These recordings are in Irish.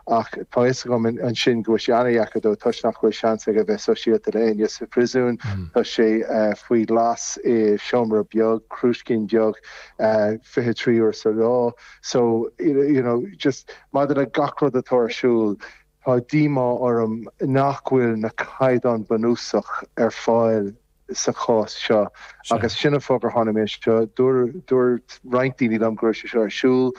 Ach tá a fhios agam ansin go bhfuil sé an-deacair dó toisc nach bhfuil seans aige bheith sóisialta le éinne sa phríosún. Tá sé faoi ghlas i seomra beag, cillín beag, fiche trí uair sa lá. So, you know, just maidir le gach rud atá ar siúl, tá díomá orm nach bhfuil na caighdeán bunúsach ar fáil. sa chás seo. Agus sin an fáth gur tháinig mé anseo. Dúirt roinnt daoine liom go raibh sé seo ar siúl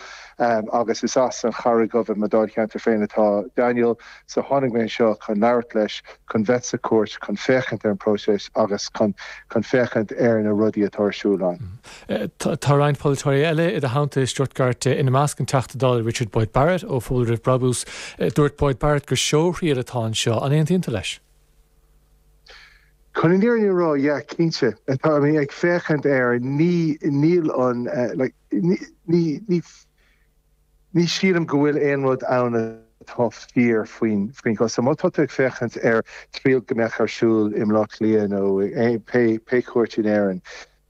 agus is as an Charraig Dhubh i mo Dháilcheantar féin atá Daniel so tháinig mé anseo chun labhairt leis, chun bheith sa chúirt, chun féachaint ar an próiseas agus chun féachaint ar na rudaí atá ar siúl ann. Tá roinnt polaiteoirí eile i do theannta i Stuttgart, ina measc an Teachta Dála Richard Boyd Barrett ó Phobal Roimh Brabús. Dúirt Boyd Barrett gur seóthriail atá anseo. An aontaíonn tú leis? Chun an fhírinne a rá, yeah, cinnte, tá mé ag féachaint air, ní, níl an, like, ní, ní, ní, ní shílim go bhfuil aon rud ann atá fíor faoin, faoin gcosán. Má tá tú ag féachaint ar triail go mbeadh ar siúl i mBleá Cliath nó pé, pé chúirt in Éirinn,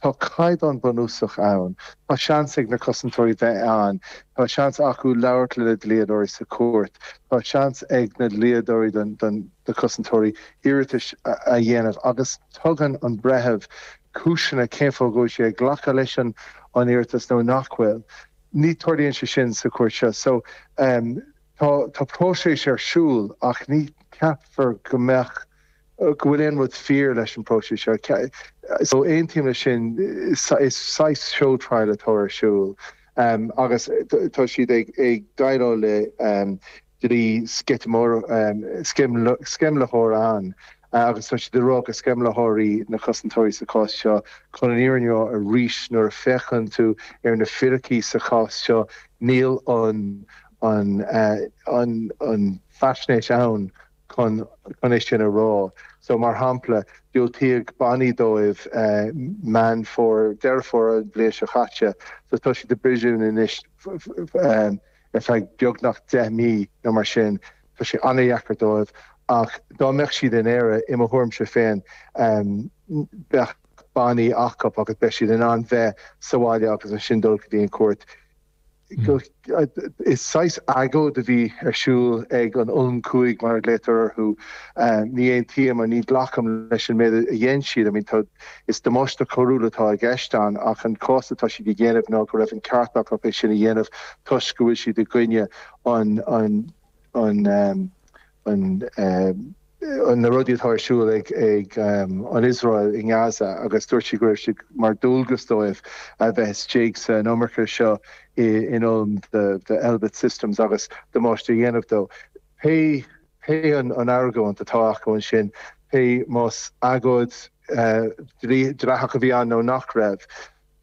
Tá caighdeán bunúsach ann. Tá seans ag na cosantóirí bheith ann. Tá seans acu labhairt lena dlíodóirí sa chúirt. Tá seans ag na dlíodóirí don na cosantóirí iarratais a dhéanamh agus tugann an breitheamh cúiseanna cén fáth go bhfuil sé ag glacadh leis an an iarratas nó nach bhfuil. Ní tarlaíonn sé sin sa chúirt seo. So tá tá próiseas ar siúl ach ní ceapfar go mbeadh. go bhfuil aon rud fíor leis an bpróiseas seo. So aontaím leis sin. Is saghas show trial atá ar siúl agus tá siad ag déileáil le dlí sceimhlitheoireachta agus tá siad ag rá gur sceimhlitheoirí na cosantóirí sa chás seo chun an fhírinne a rá arís nuair a féachann tú ar na fíricí sa chás seo níl an faisnéis ann chun é sin a rá. So, mar shampla, diúltaíodh bannaí dóibh Meán Fómhair, Deireadh Fómhair an bhliain seo chaite, so tá siad i bpríosún anois ar feadh beagnach deich mí nó mar sin. Tá sé an-dheacair dóibh ach dá mbeadh siad in Éire, i mo thuairimse féin, bheadh bannaí acu agus beidh siad in ann bheith sa bhaile agus ansin dul go dtí an chúirt. Is saghas agóid a bhí ar siúl ag an Ulm Cúig, mar a ghlaotar orthu. Ní aontaím, ní ghlacaim leis an méid a dhein siad. I mean, is damáiste coiriúil atá i gceist ann, ach an cás atá siad a dhéanamh ná go raibh an ceart acu é sin a dhéanamh toisc go bhfuil siad i gcoinne an an na rudaí atá ar siúl ag an Iosrael i nGaza agus dúirt sí go raibh siad mar dualgas dóibh a bheith istigh sa monarcha seo in Ulm de Elbit Systems agus damáiste a dhéanamh dó. Pé pé an argóint atá acu ansin, pé más agóid dleathach a bhí ann nó nach raibh,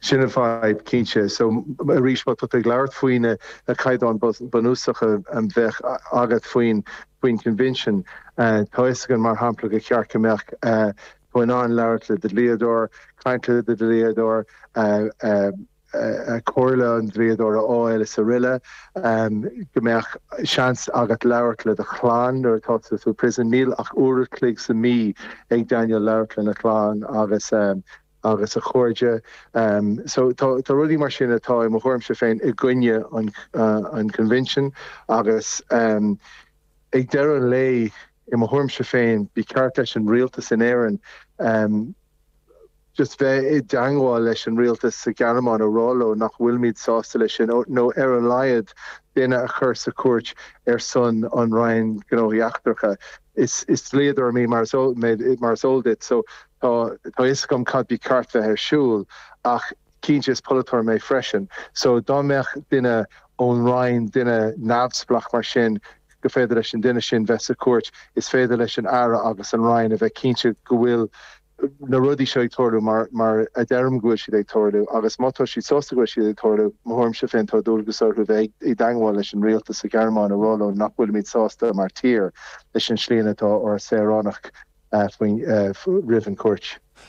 Sin an fadhb, cinnte. So, arís, má tá tú ag labhairt faoi na caighdeáin bunúsacha a bheadh agat faoin Convention, tá fhios againn, mar shampla, gur cheart go mbeadh tú in ann labhairt le do dhlíodóir, caint le do dhlíodóir, comhairle an dlíodóra a fháil is araile, go mbeadh seans agat labhairt le do chlann nuair atá tú sa prison. Níl ach uair a' chloig sa mí ag Daniel labhairt lena chlann agus agus a chairde. So tá rudaí mar sin atá, i mo thuairimse féin, i gcoinne an Convention agus ag deireadh an lae, i mo thuairimse féin, ba cheart leis an rialtas in Éirinn just bheith i dteangmháil leis an rialtas sa Ghearmáin a rá leo nach bhfuilimid sásta leis sin nó ar a laghad duine a chur sa chúirt ar son an Roinn Gnóthaí Eachtracha. Is dlíodóir mé mar is eol duit so Tá a fhios agam cad ba cheart bheith ar siúl ach cinnte is polaiteoir mé freisin so dá mbeadh duine ón Roinn, duine neamhspleach mar sin, go féidir leis an duine sin bheith sa chúirt, is féidir leis an Aire agus an Roinn a bheith cinnte go bhfuil na rudaí seo ag tarlú mar a deirim go bhfuil siad ag tarlú agus má tá siad sásta go bhfuil siad ag tarlú, mo thuairimse féin, tá dualgas orthu bheith i dteangmháil leis an rialtas sa Ghearmáin a rá leo nach bhfuilimid sásta mar tír. leis an slí ina tá ár saoránach faoin, roimh an gcúirt.